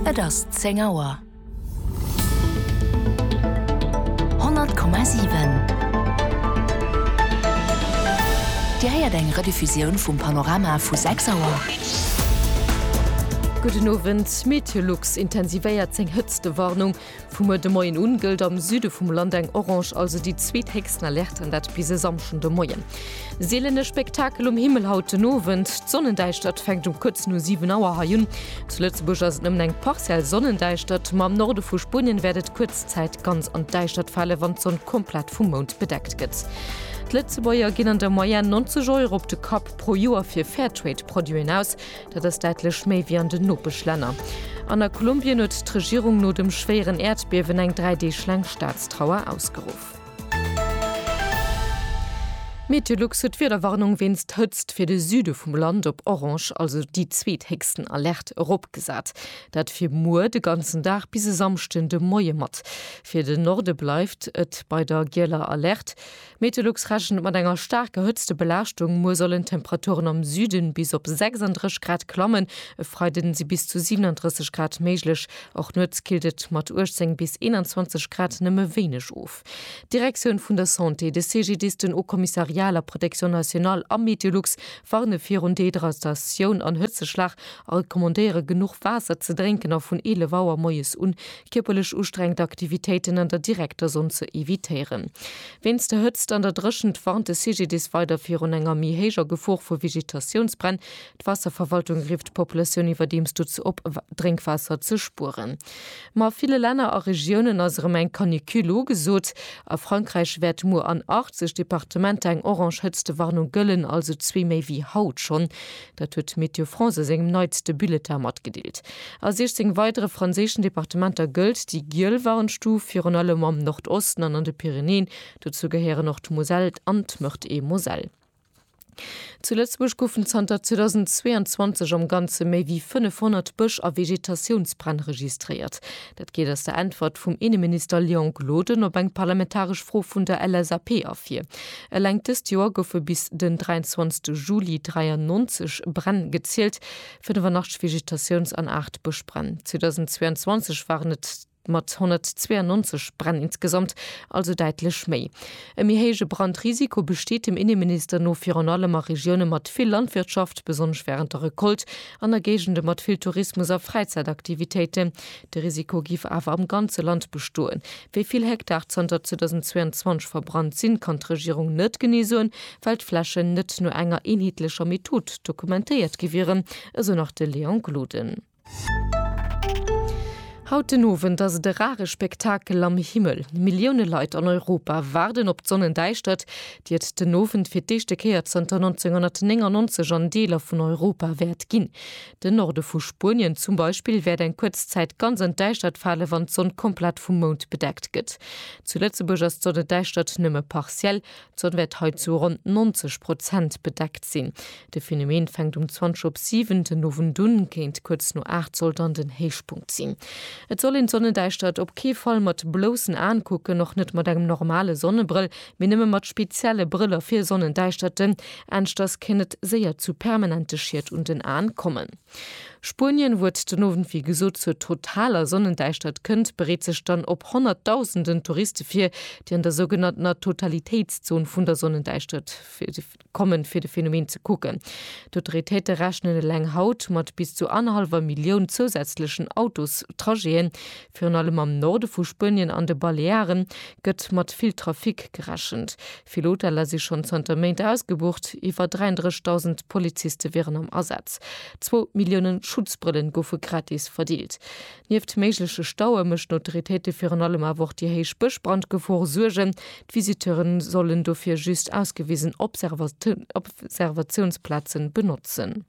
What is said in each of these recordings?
Et ass zéng Auer. 100,7 Dir héiert eng Rediffusioun vum Panorama vu 6 Auer. Gudden Owend, Meteolux intensivéiert seng Hëtztewarnung. Vum muer de Moien un gëllt am Süde vum Land eng Orange, also déi zweet héchsten Alerte, an dat bis e Samschden de Moien. Seelene Spektakel um Himmel haut den Owend, D'Sonnendäischtert fänkt um kuerz no 7 Auer hei un. Zu Lëtzebuerg ass et nëmmen eng partiell Sonnendäischtert, ma am Norde vu Spuenien wäert et kuerz Zäit ganz an d'Däischtert fale wann d'Sonn komplett vum Mound bedeckt gëtt. D'Lëtzebuerger ginn an der Moyenne 90 Euro op de Kapp pro Joer fir Fairtrade-Produiten aus. Dat ass däitlech méi wéi an den Nopeschlänner. An a Kolumbien huet d'Regierung no dem schwéieren Äerdbiewen eng dräi Deeg laang Staatstrauer ausgeruff. Meteolux huet d'Wiederwarnung wéinst Hëtzt fir de Süde vum Land op orange, also déi zweethéchsten Alerte, eropgesat. Dat fir muer de ganzen Dag bis e Samschden de Moie mat. Fir den Norde bleift et bei der gieler Alerte. Meteolux rechent mat enger staark gehëtzte Belaaschtung. Muer sollen d'Temperaturen am Süden bis op 36 Grad klammen, e Freiden si bis zu 37 Grad méiglech. Och nuets killt et mat 18 bis 21 Grad nëmme wéineg of. D'Direktioun vun der Santé, de CGDIS, den Haut Commissariat à la Protection Nationale a Meteolux warne virun Dehydratatioun an Hëtzeschlag a recommandéiere genuch Waasser ze drénken a vun 11 Auer moies un kierperlech ustrengend Aktivitéiten an der direkter Sonn ze evitéieren. Wéinst der Hëtzt an der Dréchent warnt de CGDIS weider virun enger méi héijer Gefor vu Vegetatiounsbränn. D'Waasserverwaltung rifft d'Populatioun iwwerdeems dozou op, Drénkwaasser ze spueren. Ma a ville Länner a Regiounen ass erëm eng Canicule ugesot. A Frankräich wäert muer an 80 Departementer eng orange Hëtztewarnung gëllen, also zwee méi wéi haut schonn. Dat huet Météo France a sengem neitste Bulletin matgedeelt. A 16 weidere franséischen Departementer gëllt déi giel Warnstuf, virun allem am Nordosten an an de Pyrenäen. Dozou gehéieren och d'Moselle an d'Meurthe-et-Moselle. Zu Lëtzebuerg goufen zanter 2022 am Ganze méi wéi 500 Bësch a Vegetatiounsbränn registréiert. Dat geet aus der Äntwert vum Inneminister Léon Gloden op eng parlamentaresch Fro vun der LSAP ervir. Eleng dëst Joer goufe bis den 23 Juli 93 Bränn gezielt, 85 Vegetatiouns an 8 Bëschbränn. 2022 waren et mat 192 Bränn insgesamt also däitlech méi. E méi héije Brandrisiko besteet dem Inneminister no virun allem a Regioune mat vill Landwirtschaft, besonnesch wärend der Recolte an a Géigende mat vill Tourismus a Fräizäitaktivitéiten. De Risiko giff awer am ganze Land bestoen. Wéi vill Hektar zanter 2022 verbrannt sinn, kann d'Regierung net genee soen, well d'Flächen net no enger eenheetlecher Method dokumentéiert gi wieren, esou nach de Léon Gloden. Haut den Owend ass et e rare Spektakel am Himmel. Millioune Leit an Europa waarden op d'Sonnendäischtert, déi et den Owend fir d'éischte Kéier zënter 1999 an Deeler vun Europa wäert ginn. Den Norde vu Spuenien zum Beispill wäert eng kuerz Zäit ganz an d'Däischtert fale wann d'Sonn komplett vum Mound bedeckt gëtt. Zu Lëtzebuerg ass d'Sonnedäischtert nëmme partiell, d'Sonn wäert hei zu ronn 90 Prozent bedeckt sinn. De Phänomen fänkt um 20 op 7 den Owend un, kéint kuerz no 8 soll dann den Héichpunkt sinn. Et soll een d'Sonnedäischtert op kee Fall mat bloussen Aen kucken, och net mat engem normale Sonnebrëll, Mee nëmme mat spezielle Brëller fir Sonnendäischterten, anschters kéint et séier zu permanente Schied un den Aen kommen. Spuenien, wou et den Owend wéi gesot zur totaler Sonnendäischtert kënnt, bereet sech dann op Honnertdausenden Touriste vir, déi an der sougenanntener Totalitéitszon vun der Sonnendäischtert, Kommen, fir de Phänomen ze kucken. D'Autoritéite rechnen eleng haut mat bis zu annerhallwer Millioun zousätzlechen Autostrajete. Virun allem am Norde vu Spuenien an de Baleare gëtt mat vill Trafic gerechent. Vill Hoteller si schonn zanter Méint ausgebucht. Iwwer 33.000 Poliziste wieren am Asaz. Zwou Millioune Schutzbrëllen goufe gratis verdeelt. Nieft méigleche Staue méchten d'Autoritéite virun allem awer och déi héich Bëschbrandgefor Suergen. D'Visiteure sollen dofir just ausgewisen Observatiounsplaze benotzen.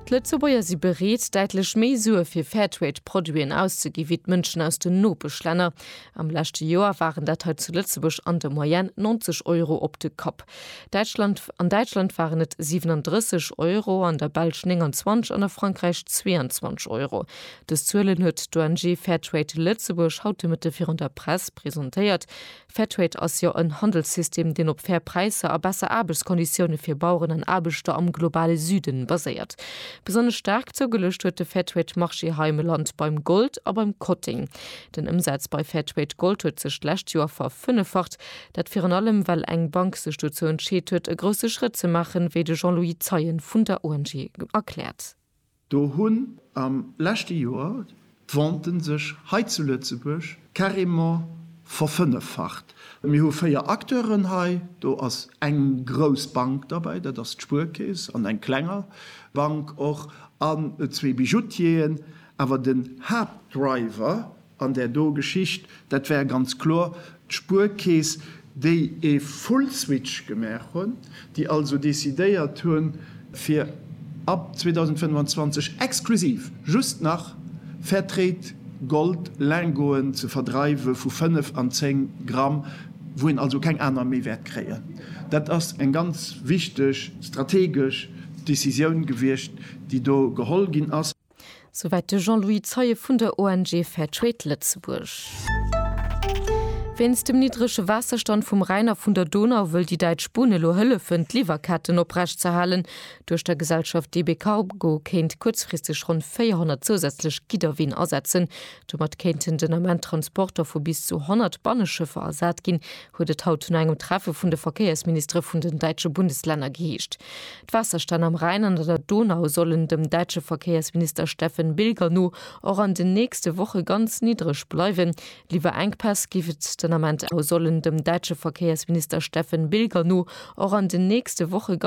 D'Lëtzebuerger si bereet, däitlech méi Sue fir Fairtrade-Produiten auszegi wéi d'Mënschen aus den Nopeschlänner. Am leschte Joer waren dat hei zu Lëtzebuerg an der Moyenne 90 Euro op de Kapp. An Däitschland waren et 37 Euro, an der Belsch 29 an a Frankräich 22 Euro. Dës Zuelen huet d'ONG Fairtrade Lëtzebuerg haut de Mëtte virun der Press presentéiert. Fairtrade ass jo en Handelssystem, deen op fair Präisser a besser Aarbechtskonditioune fir Baueren an Aarbechter am globale Süden baséiert. Besonnesch staark zougeluecht huet de Fairtrade Marché hei am Land beim Gold a beim Kotteng. Den Ëmsaz bei Fairtrade Gold huet sech d'lescht Joer verfënneffacht. Dat virun allem, well eng Bank sech dozou entscheet huet, e grousse Schrëtt ze maachen, wéi de Jean-Louis Zeien vun der ONG erkläert. Do hunn am leschte Joer d'Venten sech hei zu Lëtzebuerg carrément verfënneffacht. Mir hu véier Acteuren hei, do ass eng grouss Bank derbäi, dat ass d'Spuerkeess, an eng klenger Bank och, an zwee Bijoutieren. Awer den Haaptdriver An där do Geschicht, dat war ganz kloer d'Spuerkeess, déi e Full-Switch gemaach hunn, déi also decidéiert hu fir ab 2025 exklusiv just nach Fairtrade Gold Lingoten ze verdreiwe vu 5 an 10 Gramm, wou een also keng aner méi wäert kréien. Dat ass eng ganz wichteg strategesch Decisioun gewiescht, déi do geholl ginn ass. Souwäit de Jean-Louis Zeie vun der ONG Fair Trade Lëtzebuerg. Wéinst dem niddrege Waasserstand vum Rhäin a vun der Donau wëll déi däitsch Bunn elo hëllefen, d'Liwwerketten oprechtzehalen. Duerch der Gesellschaft DB Cargo kéint kuerzfristeg ronn 400 zousätzlech Gidderween asetzen. Domat kéinten den Ament Transporter vu bis zu 100 Banneschëffer ersat ginn, huet et haut no engem Treffe vun de Verkéiersministere vun den däitsche Bundeslänner geheescht. D'Waasserstänn am Rhäin an an der Donau sollen dem däitsche Verkéiersminister Steffen Bilger no och an den nächste Woche ganz niddreg bleiwen. Liwwerenkpäss géif et den Ament awer sollen dem däitsche Verkéiersminister Steffen Bilger no och an den nächste Woche ganz.